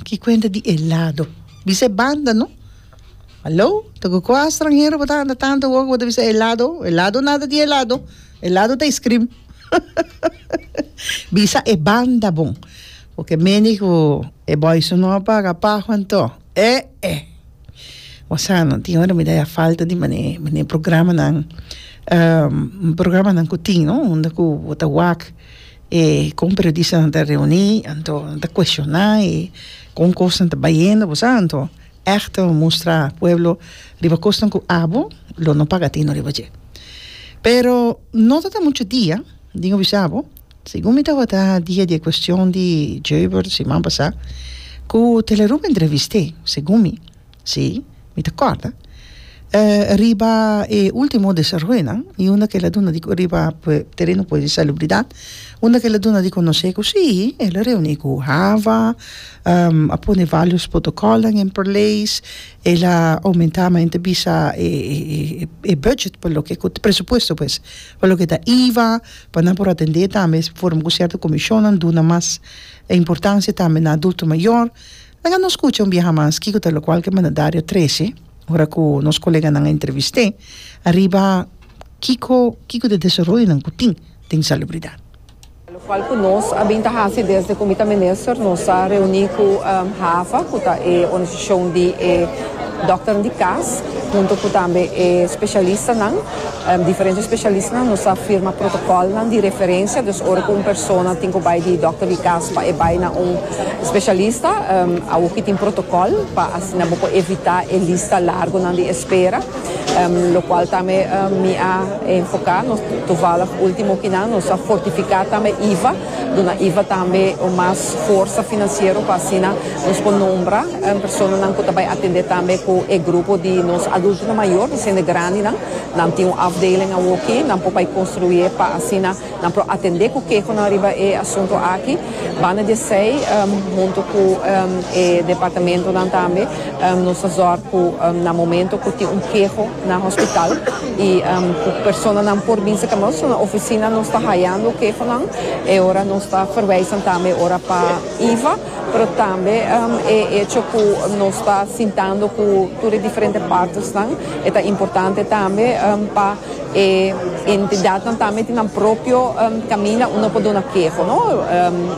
Ki kuenta di e lado. Bisa e banda no. Hallo, ta ku kua stranhero bo ta anda tantu awor ku bo ta bisa e lado? E lado nada di e lado. E lado ta iskrim. Bisa e banda bon. Porque mendi ku e boyzun no a paga paho anto e'e. Bo sa no, tin ora mi ta ya falta di mane programanan programanan ku tin no unda ku bo ta wak E kon periodista nan ta reuni, anto nan ta kueshoná i kon kosnan ta bai hende, bo sa. Anto ègt ta mustra pueblo riba kosnan ku abo lo no paga tino riba dje. Pero no ta ta muchu dia, tin ku bisa bo, segun mi tabata dia di e kuestion di Joburg siman pasá, ku Telerumbo entrevist'é, segun mi. Sí, mi ta kòrda. E riba e último desaroyonan i unda ku el a duna di riba tereno di salubridat, unda ku el a duna di konosé ku sí, el a reuní ku Hava, a pone vários protokòlnan en plerleis, el a oumentá mi ta bisa e bùdjet pa loke ku presupuesto pues, pa loke ta iva, pa nan por atendé tambe forma ku sierto komishonnan, duna mas importansia tambe na adulto mayor. Laga nos scucha un biaha mas kico ta locual ke mandadario trece ora cu nos coleganan a entrevist'é ariba kico kico ta e desaroyonan cu tin den salubridad. Locual cu nos a bin ta haci desde cu mi ta minister nos a reuni cu HAVA cu ta e organisacion di e dokternan di cas hunto cu tambe e specialistanan diferente specialistanan nos a firma protocolnan di referencia, dus ora cu un persona tin cu bay di dokter di cas pa e bay na un Specialista awo ki tin protocol pa asina bo por evita e lista largonan di espera, locual tambe mi a enfoca nos tovallig ultimo kinan, nos a fortifica tambe iva, duna iva tambe un mas forsa financiero pa asina nos por nombra personanan cu ta bay atende tambe cu e grupo di nos adultonan mayor, hiciende grandinan, nan tin un afdeling awo ki, nan por bay construi pa asina. Nan por atendé ku kehonan riba e asuntu aki banda di esei huntu ku e departamentunan tambe nos ta zòrg ku na momento ku tin un keho na hospital i ku personanan por bin serka nos na ofisina nos ta hayando kehonan e ora nos ta ferweisan tambe ora pa iva pero tambe e echo ku nos ta sintando ku tur e diferente partnersnan e ta importante tambe pa E entidadnan tambe tin nan propio kaminda unda por duna keho, no?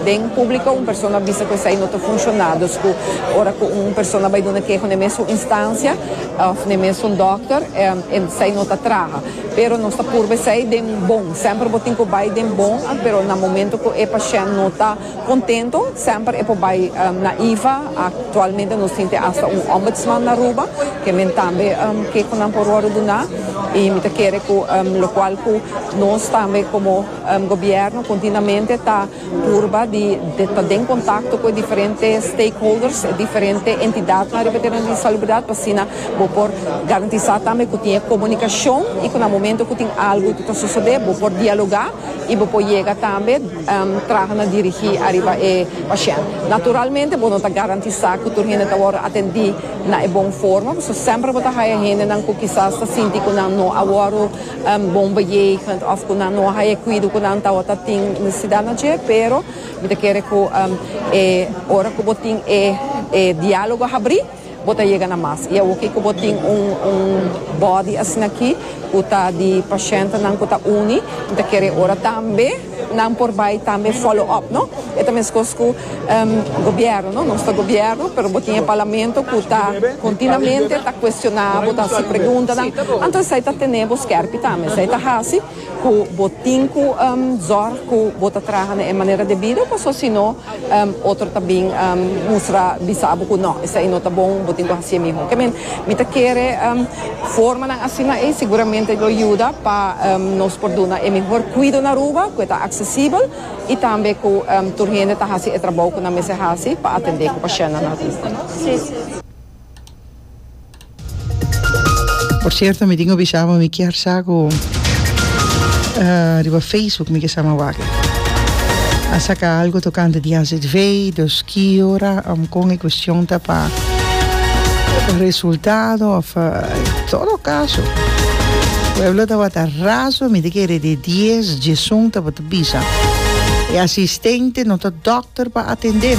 Den públiko un persona bisa ku esei no ta funshoná, dus ku ora ku un persona bai duna keho na e mesun instansia òf na e mesun dòkter esei no ta traha. Pero nos ta purba esei den bon, semper bo tin ku bai den bon, pero na momento ku e pashènt no ta. Contento semper e por bay na iva. Actualmente nos tin te hasta un Ombudsman na Aruba ke men tambe ke cu nan por wordo duna y mi ta kere cu locual cu nos tambe como Gobierno continuamente ta purba di ta den contacto cu e diferente stakeholders, e diferente entidadnan riba e terreno di salubridad pa asina bo por garantisa tambe cu tin e comunicacion y cu na momento cu tin algo cu ta sosode bo por dialoga y bo por yega tambe. traha na dirigí ariba e pashènt. Naturalmente bo no ta garantisá ku tur hende ta wòrdu atendí na e bon forma, pasobra semper bo ta haya hendenan ku kisas ta sinti ku nan no a wòrdu bon beyegend òf ku nan no a haya e kuido ku nan tabata tin nesesidat na dje. Pero mi ta kere ku e ora ku bo tin e diálogo habrí, Bo ta yega na mas. I awoki ku bo tin un un bòdi asin'akí ku ta di pashentenan ku ta uni, mi ta kere ora tambe nan por bai tambe follow up, no? E ta meskos ku gobièrnu, no? Nos ta gobièrnu, pero bo tin e parlamento ku ta kontinuamente ta kuestioná bo, ta hasi preguntanan. Anto esei ta tene bo skèrpi tambe. Esei ta hasi. Cu bo tin cu zorg cu bo ta traha na e manera debido pues osino otro ta bin mustra bisa bo cu no esai no ta bon bo tin cu haci'e miho. Ke men mi ta kere formanan asina ey seguramente lo yuda pa nos por duna e mihor cuido na Aruba cu e ta accesibel y tambe cu tur hende ta haci e trabou cu nan mester haci pa atende cu paciennan na Aruba. Por cierto mi tin cu bisa bo mi kier sa cu riba Facebook mi ke sa ma wak a saca algo tocante di azv dos ki ora am con e cuestion ta pa resultado of todo caso pueblo tabata razo mi ta kere di dies diesun tabata bisa e asistente no ta doctor pa atendem.